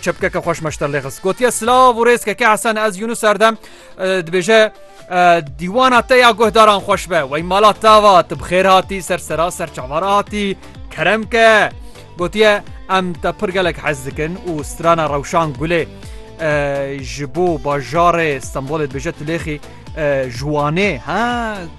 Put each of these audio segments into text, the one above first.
Çepkeke xweş meşter lê xist gotiye silav û rêzkeke hesen ez Yunus serdem dibêje dîwana te ya guhdaran xweş be wey mala tava tu bi xêr hatî ser sera ser çavara hatî kerem ke gotiye em te pir gelek hez dikin û strana rewşan gulê ji bo bajarê Stenbolê dibêje tu lêxî Ji Wanê he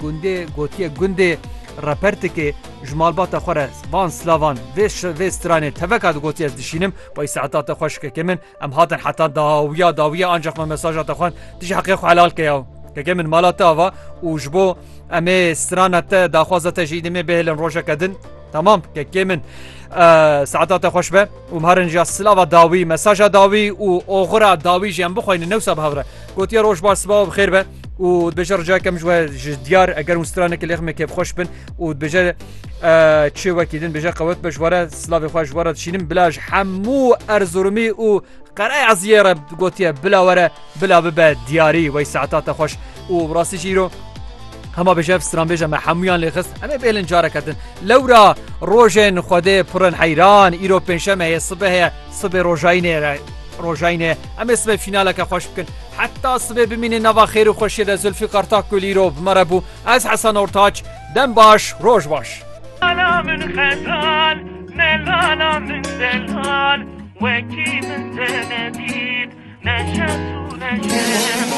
gundê gotiye gundê Repertikê ji malbata xwe re van silavan vê vê stranê teveka digotiye ez dişînim bay saeta te xweş keke min em hatin heta dawiya dawiya ancaq me mesaja te xwend tu ji heqê xwe helal ke yaw keke min mala te ava û ji bo em ê strana te daxwaza te jî demê bêhêlin rojeke din tamam kekê min saeta te xweş be. û barin jî silava dawî, mesaja dawî û oxira dawî jî em bixweynin ne wisa bi hev re. Gotiye roj baş sibawa bi xêr be û dibêje ricayeke min ji we ji diyar eger hûn stranekî lêx min kêfxweş bin û dibêje çê wekî din bêje qewet be ji we re silavê xwe ji we re dişînim bila ji hemû Erzurumî û Qereya Ziyê re gotiye bila were bila bibe diyarî wey saeta te xweş. û bi rastî jî îro hema bêje ev stranbêje me hemûyan lê xist em ê bêlin careke din lewra rojên xwedê pirin heyran îro pênşeme heye sibe heye sibê rojayînê re rojayînê em ê sibê fînaleke xweş bikin heta sibê bimînê nava xêr û xweşiyê de Zulfî Qartak Gul îro bi me re bû ez Hesan Ortaç dem baş roj baş Lala min xezal ne lala min zelal wekî min te nedît ne şes û ne şemal